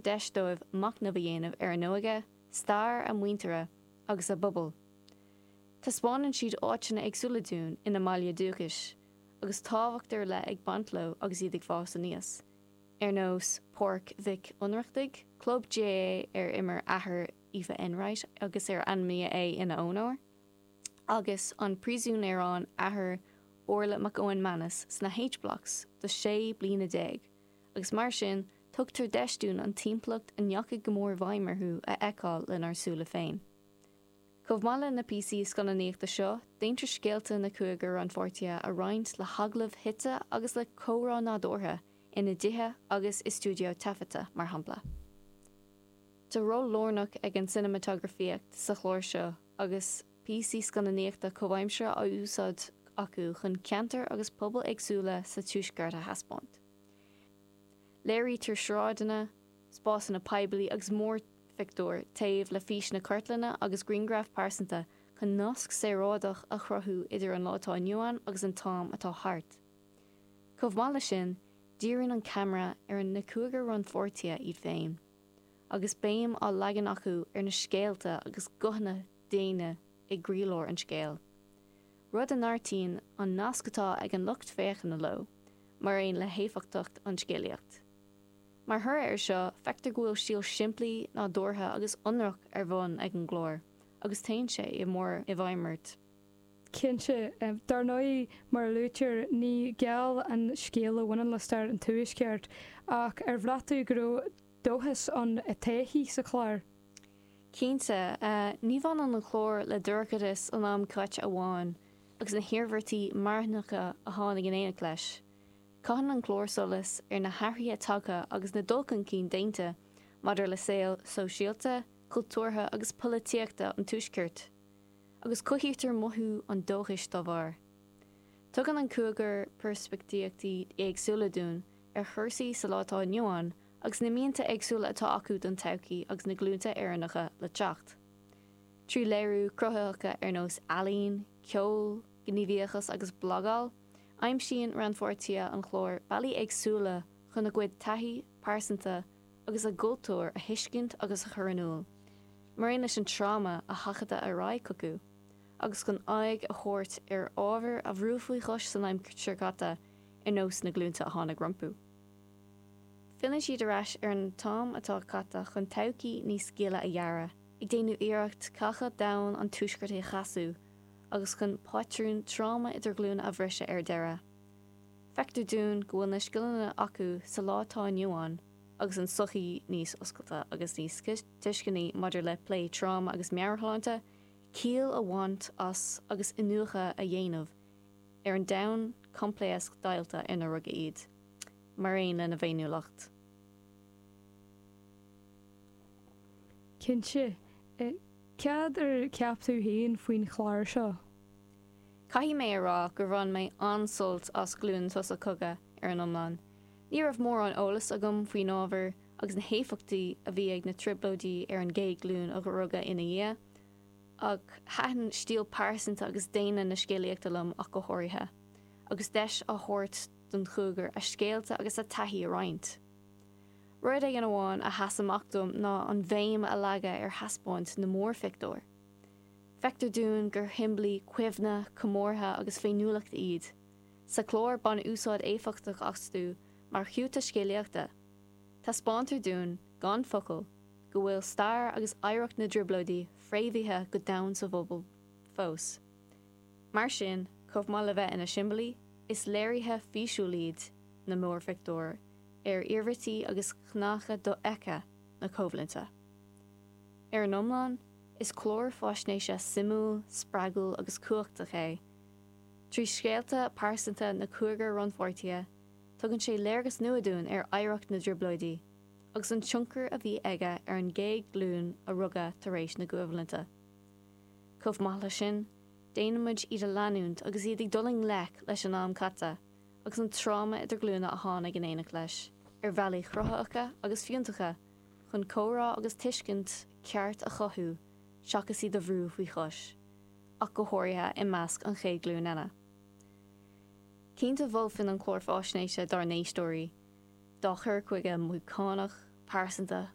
deis dóibh machnamh a dhéanamh ar a n-óige, stair a muintire agus a bpobail. Taispeánann siad áiteanna éagsúla dúinn ina mbaile dúchais, agus tábhacht ar leith ag baint leo agus iad ag fás aníos, ar nós Páirc Mhic Ionnrachtaigh, club GAA ar imir athair Aoife Enright agus ar ainmníodh é ina onóir, agus an príosún ar fhan athair Órla McManus sna H-Blocks do sé bliana déag. agus mar sin tugtar deis dúinn an timpeallacht a ndeachaigh go mór i bhfeidhm orthu a fheiceáil lenár súile féin. Chomh maith le na píosaí scannánaíochta seo, déantar scéalta na cúigear rannpháirtithe a roinnt le hagallamh suite agus le comhrá nádúrtha ina dtithe agus i stiúideo taifeadta, mar shampla. Tá ról lárnach ag an cineamatagrafaíocht sa chlár seo agus píosaí scannánaíochta comhaimseartha á úsáid acu chun ceantair agus pobail éagsúla sa tuaisceart a thaispeáint. Léirítear sráideanna, spásanna poiblí agus múrphictiúir taobh le físeanna cartlainne agus grianghraif pearsanta chun nasc saoráideach a chruthú idir an lá atá inniu ann agus an t-am atá thart. Chomh maith leis sin, díríonn an ceamara ar na cúigear rannpháirtithe iad féin, agus béim á leagan acu ar na scéalta agus guthanna daonna i gcroílár an scéil. rud a neartaíonn an nasc atá ag an lucht féachana leo, mar aon le héifeachtacht an scéalaíocht. Mar thoradh air seo, feictear go bhfuil stíl shimplí, nádúrtha agus ionraic ar bun ag an gclár agus téann sé go mór i bhfeidhm ort. Cinnte. Dar ndóigh, mar a luaitear, ní geal an scéal a bhaineann le stair an Tuaiscirt, ach ar bhraith tú go raibh. dóchas don todhchaí sa chlár. Cinnte, ní bhaineann an clár le dorchadas an am caite amháin agus na hiarmhairtí marthanacha a tháinig in éineacht leis. Caitheann an clár solas ar na hathruithe tagtha agus na dul chun cinn déanta maidir le saol sóisialta, cultúrtha agus polaitíochta an Tuaiscirt. Agus cothaítear mothú an dóchais dá bharr. Tugann an cúigear peirspictíochtaí éagsúla dúinn ar chúrsaí sa lá atá inniu ann agus na mianta éagsúla atá acu don todhchaí agus na glúnta Éireannacha le teacht. Trí léiriú cruthaitheacha ar nós ealaín, ceol, gníomhaíochas agus blagáil, aimsíonn rannpháirtithe an chláir bealaí éagsúla chun a gcuid taithí pearsanta agus a gcultúr a thuiscint agus a chur in iúl, maraon leis an tráma a seachadadh ar aghaidh chucu. agus chun aghaidh a thabhairt ar ábhar a bhrúdh faoi chois san aimsir chaite ar nós na glúinte a tháinig rompu. Filleann siad ar ais ar an t-am atá caite chun todhchaí níos gile a dhearadh, ag déanamh iarracht cneácha doimhne an Tuaiscirt a chneasú agus chun pátrún tráma idirghlúine a bhriseadh ar deireadh. Feictear dúinn go bhfuil na scileanna acu sa lá atá inniu ann agus an tsochaí níos oscailte agus níos tuisceanaí maidir le plé tráma agus meabhairshláinte, ciall a bhaint as agus iniúchadh a dhéanamh ar an domhan coimpléasc deighilte inar rugadh iad, mar aon lena bhféiniúlacht. Cinnte. Céard a cheap tú féin faoin chlár seo? Caithfidh mé a rá gur bhain mé an-sult as Glúin an tSosa Cogaidh ar an iomlán. Ní raibh mórán eolais agam faoin ábhar agus na héifeachtaí a bhí ag na Trioblóidí ar an gcéad ghlúin a rugadh ina dhiaidh, ach thaitin stíl pearsanta agus daonna na scéalaíochta liom ach go háirithe, agus deis á thabhairt don chúigear a scéalta agus a dtaithí a roinnt. Rud éigin amháin a sheas amach dom ná an bhéim a leagadh ar thaispeáint na múrphictiúr. Feictear dúinn gur shiombailí cuimhne, comórtha agus féiniúlachta iad. Sa chlár, baineadh úsáid éifeachtach astu mar chiúta scéalaíochta. Taispeántar dúinn, gan focal, go bhfuil stair agus oidhreacht na dTrioblóidí fréamhaithe go domhain sa bpobal fós. Mar sin, chomh maith le bheith ina siombailí, is léirithe físiúil iad na múrphictiúir ar iarmhairtí agus cneácha dofheicthe na coimhlinte. Ar an iomlán, is clár faisnéise suimiúil, spreagúil agus cumhachtach é, trí scéalta pearsanta na cúigear rannpháirtithe Tugann sé léargas nua dúinn ar oidhreacht na dTrioblóidí agus an tionchar a bhí aige ar an gcéad ghlúin a rugadh tar éis na coimhlinte. Chomh maith leis sin, déanaimid iad a leanúint agus iad ag dul i ngleic leis an am caite agus an tráma idirghlúine a tháinig in éineacht leis, ar bhealaí cruthaitheacha agus fiúntacha chun comhrá agus tuiscint cheart a chothú seachas iad a bhrú faoi chois, ach go háirithe i measc an chéad ghlúin eile. Cinnte mholfainn an clár faisnéise dár n-éisteoirí dá chur chuige mothúchánach, pearsanta.